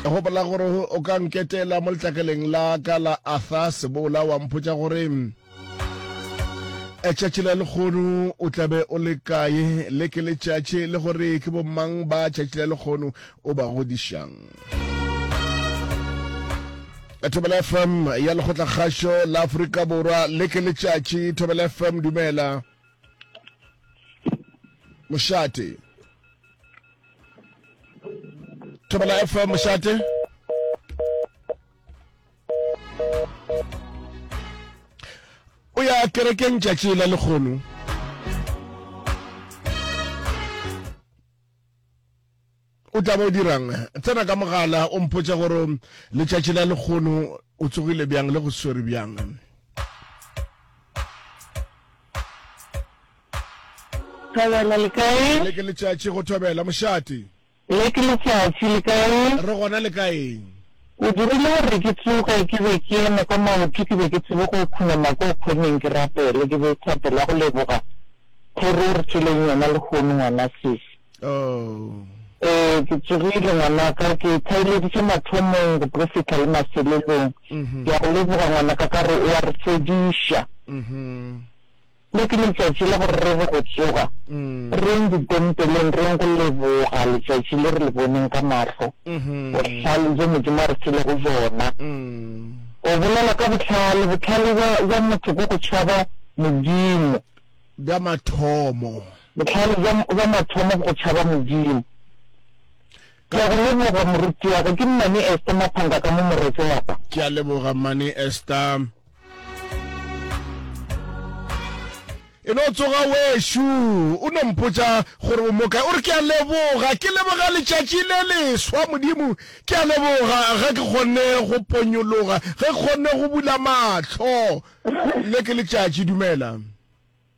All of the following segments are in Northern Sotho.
gopola gore o ka nketela mo letlakeleng la ka la arthur sebola wa mpotsa gore tšatši la lekgono o tlabe o le kae le ke letšatši le gore ke bomang ba tšatši la lekgono o ba godišang thobela fm ya lekgotlakgašo la aforika borwa le ke letšatši thobela fm dumela mošate thobela fm mošate o ya kerekeng tšatši la lekgono O tla ba o dirang? Tsena ka mogala o mpotša gore letšatši la lekgono o tsogile bjang le go swere bjang. Thobela le kae? Le ke letšatši go thobela mošate. Le ke letšatši le kae? Re gona le kaeng? O dirile gore ke tsoge ke be ke eme ka maoto ke be ke tsebe go khunama ko khoneng ke rapele ke be thapela go leboga thoro o re tšeleng yona lekgono ngwana sesi. Oh. Ee, ke tsogile ngwanaka, ke thaelediše mathomong, go tlo fihla le mafelelong. Ke a go leboga ngwanaka ka gore o a re fodiša. Le ke letšatši la gore re re go tsoga, re yeng ditempeleng, re yeng go leboga letšatši le re le boneng ka mahlo, bohlale bjo Modimo a re filego bjona. O bolela ka bohlale, bohlale bja motho ke go tšhaba Modimo. Bja mathomo. Bohlale bja, bja mathomo go tšhaba Modimo. Ke a go leboga, morutiwaka. Ke Mmane Esther Maphanga ka mo Moretšoapa. Ke a leboga, Mmane Esther. e no tsoga wešo o no mpotsa gore o mokae o re ke a leboga ke leboga letšatši le leswa modimo ke a leboga ge ke kgonne go ponyologa ge ke kgonne go bula matlho le ke letšatši dumela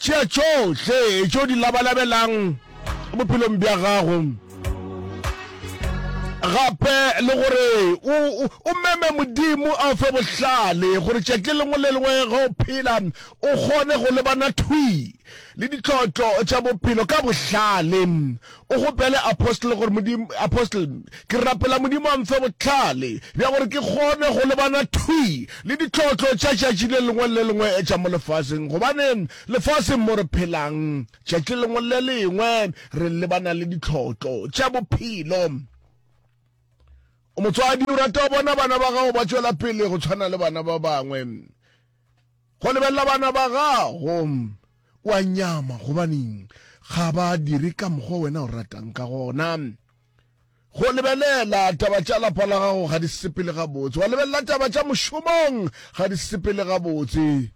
Tšea tšohle tše o di labalabelang bophelong bja gago gape le gore o, o, o meme modimo a o fe bohlale gore tšatši lengwe le lengwe ge o phela o kgone go lebana thwi le ditlotlo tša bophelo ka bohlale O kgopele Apostle gore Modimo, Apostle, ke rapela Modimo a mfe bohlale bja gore ke kgone go lebana thwi le ditlotlo tša tšatši le lengwe le lengwe tša mo lefaseng, gobane lefaseng mo re phelang tšatši le lengwe le lengwe re lebana le ditlotlo tša bophelo. O motswadi, o rata go bona bana ba gago ba tšwela pele go tshwana le bana ba bangwe. Go lebelela bana ba gago o a nyama gobaneng ga ba dire ka mokgwa wena o ratang ka gona. Go lebelela taba tša lapa la gago ga di sepele gabotse. Wa lebelela taba tša mošomong ga di sepele gabotse.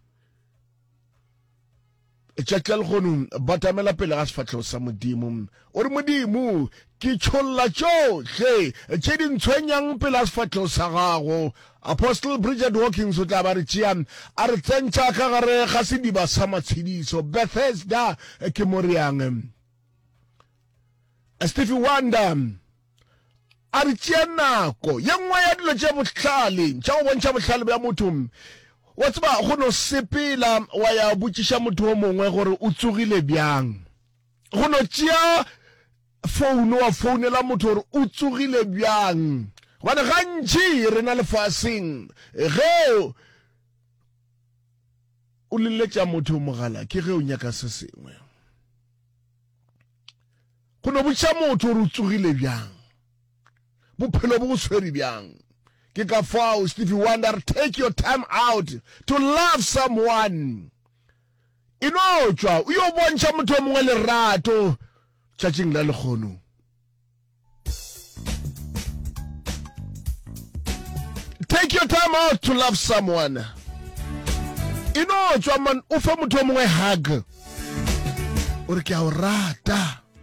Tšatši la lekgono batamela pele ga sefahlego sa Modimo. O re, Modimo, ke tšholla tšohle tše di ntshwenyang pele ga sefahlego sa gago. Apostle Bridget Hawkins o tla ba re tšea a re tsentšha ka gare ga sediba sa matshediso. Bethesda ke mo reyang. Stevie Wonder A re tšea nako. Ye nngwe ya dilo tše bohlale tša go bontšha bohlale bja motho, wa tseba, go no sepela wa ya botšiša motho o mongwe gore o tsogile bjang, go no tšea founo wa founela motho gore o tsogile bjang. Gobane gantši rena lefaseng, ge o leletša motho mogala ke ge o nyaka se sengwe. Go no botša motho gore o tsogile bjang, bophelo bo go tshwere bjang. Ke ka fao Stevie Wonder take your time out to love someone. E no tšwa o yo bontšha motho o mongwe lerato tšatšing la lekgono. take your time out to love someone e no tswa man o fe motho o mongwe hug o re ke a o rata